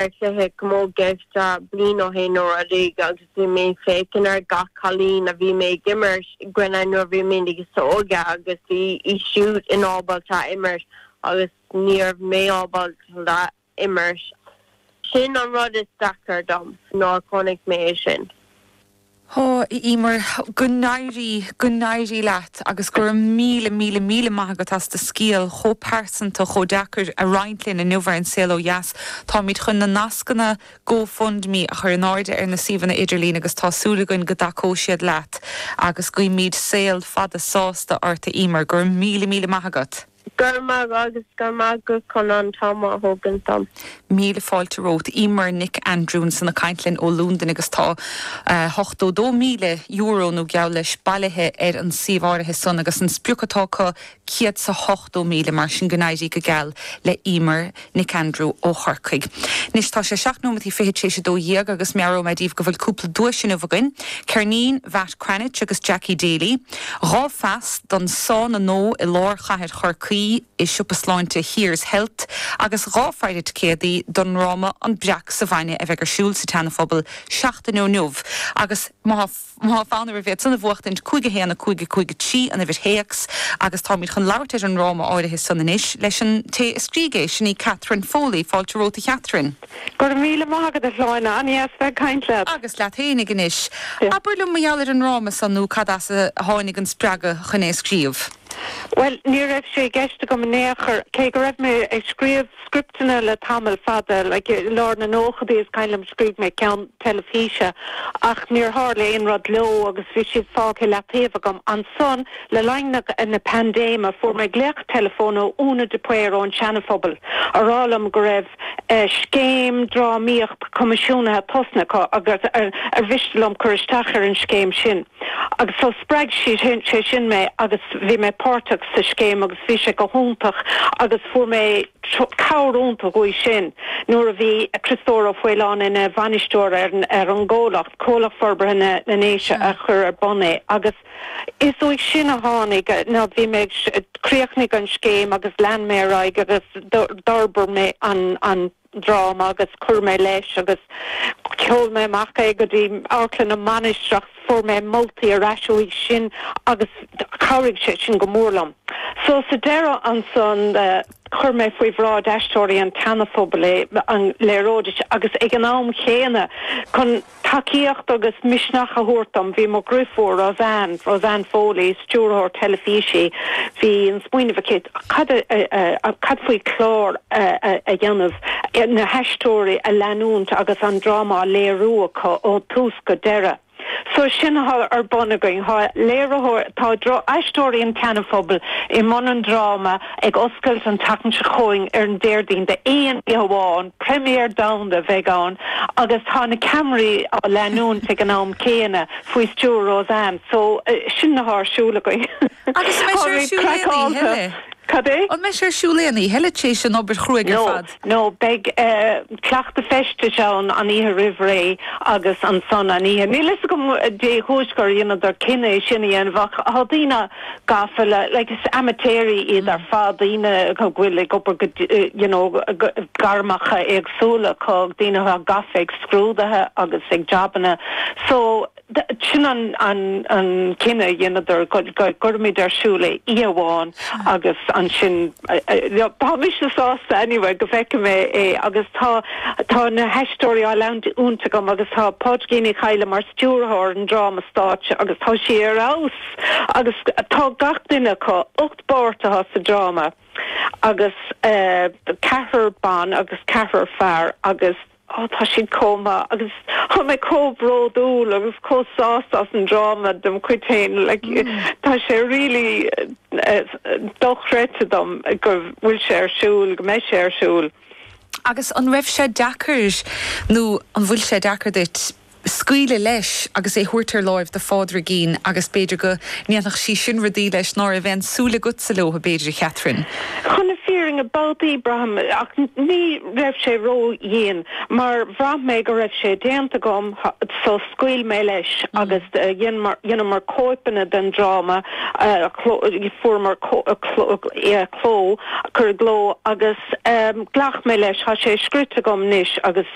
ar chluiche camógaíochta bliain ó shin nó rudaí agus bhí mé ag féachaint ar gach cailín a bhí mé ag imirt i gcoinne nuair a bhí mé níos óige agus bhí í siúd in ábalta a imirt agus ní raibh mé ábalta a imirt. Sin an rud is deacair dom nuair a chonaic mé é sin. Ó, a Emer, go n-éirí, go n-éirí leat agus go raibh míle, míle, míle maith agat as do scéal chomh pearsanta, chomh deacair a roinnt linn inniu ar An Saol Ó Dheas. Táimid chun na nascanna Go Fund Me a chur in airde ar na suíomhanna idirlín agus tá súil againn go dtacóidh siad leat agus guímid saol fada sásta ort, a Emer. Go raibh míle, míle maith agat. Go raibh maith agat agus go raibh maith agat chun an t-am a thógaint dom. Míle fáilte romhat Emer Nic Aindriú ansan ag caint linn ó Londain agus tá €82,000 nó geall leis bailithe ar an suíomh áirithe san agus an sprioc atá acu céad is a hochtó míle mar sin go n-éirí go geal le Emer. Nic Aindriú ó Chorcaigh. Anois tá sé seacht nóimeataí fichead tréis a dó dhéag agus meabhróidh mé daoibh go bhfuil cúpla duais inniu againn, ceirnín Mhatt Cranitch agus Jackie Daly, dhá phas don sána nua i lár chathair Chorcaí i siopa sláinte Here's Health agus dhá phaire ticéadaí don ndráma An Breac sa Bhainne a bheidh ar siúl sa tSeanaphobal seachtain ó inniu agus má Tá fonn oraibh iad san a bhuachtaint, 5 1 5 5 3 an uimhir théacs agus táimid chun labhairt ar an ndráma áirithe san anois leis an té a scrígh é, sin í Catherine Foley. Fáilte romhat a Chatherine. Go raibh míle maith agat a Shláine, an-dheas bheith ag caint leat. Agus leat fhéinig anois. Abair liom mar gheall ar an ndráma san nó cad as a tháinig an spreagadh chun é a scríobh? Bhuel, ní raibh sé i gceist agam in aon chor, cé go raibh mé ag scríobh. Scripteanna le tamall fada, like i lár na nóchaidí is cuimhin liom scríobh mé ceann teilifíse ach níor tharla aon rud leo agus bhí siad fágtha i leataobh agam. Ansan le linn na paindéime fuair mé glaoch teileafóin ó Úna de Paor ón Seanaphobal á rá liom go raibh scéim drámaíocht coimisiúnaithe tosnaithe acu agus ar mhiste liom cur isteach ar an scéim sin. Agus so spreag sé sin mé agus bhí mé páirteach sa scéim agus bhí sé go hiontach agus fuair mé cabhair iontach uaidh sin nuair a bhí Criostóir Ó Faoláin ina bhainisteoir ar ar an gcomhlacht, Comhlacht Forbartha na na nDéise a chuir ar bun é agus is uaidh sin a tháinig nó bhí mé chríochnaigh an scéim agus lean mé ar aghaidh agus d'fhorbair mé an an dráma agus chuir mé leis agus sheol mé amach é go dtí Amharclann na Mainistreach. Fuair mé moltaí ar ais uaidh sin agus chabhraigh sé sin go mór liom. So sa deireadh ansan chuir mé faoi bhráid aisteoirí an tSeanaphobail é, an léireoidís, agus ag an am chéanna chun. Tacaíocht agus misneach a thabhairt dom, bhí mo dhriofúr Roseanne, Roseanne Foley, stiúrthóir teilifísí, bhí an smaoineamh aici cad a, cad faoi clár a dhéanamh, na haisteoirí a leanúint agus an dráma á léiriú acu ó thús go deireadh. So sin atá ar bun againn, tá léiritheoir, tá aisteoirí an tSeanaphobail i mbun an dráma, Ag oscailt an tseachtain seo chugainn ar an Déardaoin d'aon oíche amháin, première domhanda a bheidh ann agus tá na ceamaraí á leanúint ag an am céanna faoi stiúir Roseanne so sin atá ar siúl againn. Agus an mbeidh sé ar siúl aon oíche eile? Cad é? An mbeidh sé ar siúl aon oíche eile tar éis an obair chruaidh ar fad? Nó beidh cleachtadh feistis ann an oíche roimh ré agus ansan an oíche. Níl a fhios agam dé chúis gur dheineadar cinneadh é sin a dhéanamh ach tá daoine gafa le, like, is amaitéaraí iad ar fad, daoine go bhfuil ag obair go, you know, gairmeacha éagsúla acu, daoine atá gafa ag scrúdaithe agus ag jabanna. So. Sin an cinneadh a dheineadar, go gcuirfimid ar siúl é oíche amháin agus ansin, tá mise sásta anyway go bhfeicfidh mé é agus tá na haisteoirí á leanúint agam agus tá Pádraigín Uí Chadhla mar stiúrthóir an dráma stáitse agus tá sí ar fheabhas agus tá gach duine acu, ocht bpáirt atá sa dráma agus ceathrar ban agus ceathrar fear agus. Ó tá siad chomh maith agus tá mé chomh bródúil agus chomh sásta as an dráma dem chuid féin. Like tá sé really dochreidte dom go bhfuil sé ar siúl, go mbeidh sé ar siúl. Agus an raibh sé deacair nó an bhfuil sé deacair duit scaoileadh leis agus é thabhairt ar láimh do Phádraigín agus b'fhéidir go ndéanfadh sí sin rudaí leis ná raibh aon súil agatsa leobhtha b'fhéidir a Chatherine. Chun na fírinne babhtaí braithim ach ní raibh sé ró dhian mar bhraith mé go raibh sé déanta agam so scaoil mé leis agus dheineamar cóipeanna den dráma fuaireamar cló cuireadh i gcló agus ghlac mé leis thá sé scrite agam anois agus